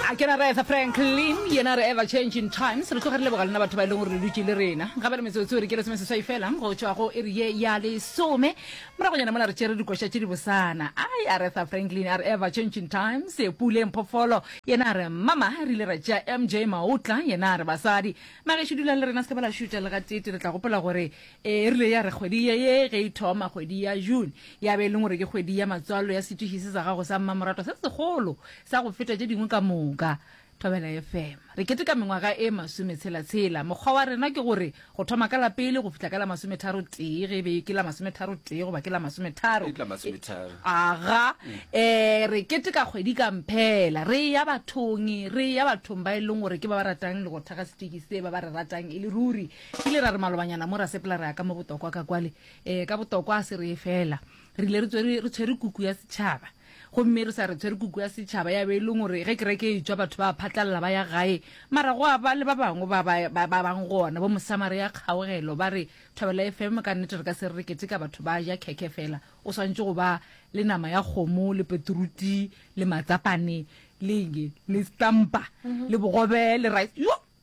A ke na re Aretha Franklin, yena re ever changing times, re tloga re leboga lena batho ba e leng gore le dutše le rena. Gabane metsotso e re ke lesome seswai fela go tšwa go iri ye ya lesome. Moragonyana mola re tšere dikoša tše dibosana. Ai, Aretha Franklin a re ever changing times, Pule Mphofolo yena a re mama, re ile ra tšea MJ Maotla yena a re basadi. Magešo dulang le rena, se ke ba la šutša le gatee-tee. Le tla gopola gore e rile ya re kgwedi ye ye ge e thoma, kgwedi ya June, ya be e leng gore ke kgwedi ya matswalo ya setwiši se sa gago sa mmamoratwa se segolo Sa go feta tše dingwe ka moka. Thobela FM. Re keteka mengwaga e masometshela-tshela. Mokgwa wa rena ke gore go thoma ka la pele go fihla ka la masometharo-tee, ge e be ke la masometharo-tee goba ke la masometharo, aga, e, re keteka kgwedi ka mphela, re eya bathong, re eya bathong ba e leng gore ke ba ba ratang le go thekga seteki se, ba ba re ratang e le ruri. Re ile ra re malobanyana mo ra sepela ra ya ka mo botokwa ka kwale, e, ka botokwa a se reye fela. Re ile re tswere, re tshwere kuku ya setšhaba. Gomme re sa re tshwere kuku ya setšhaba ya be e leng gore ge kereke e tšwa batho ba a phatlalala ba ya gae. Mara go a ba le ba bangwe ba ba, ba, ba bang gona, bo Mosamaria Kgaogelo, ba re, Thobela FM, ka nnete re ka se re re keteka batho ba ja khekhe feela. O swanetše go ba le nama ya kgomo, le peturuti, le matsapane, le eng, le stampa, le bogobe, le rice. Yo!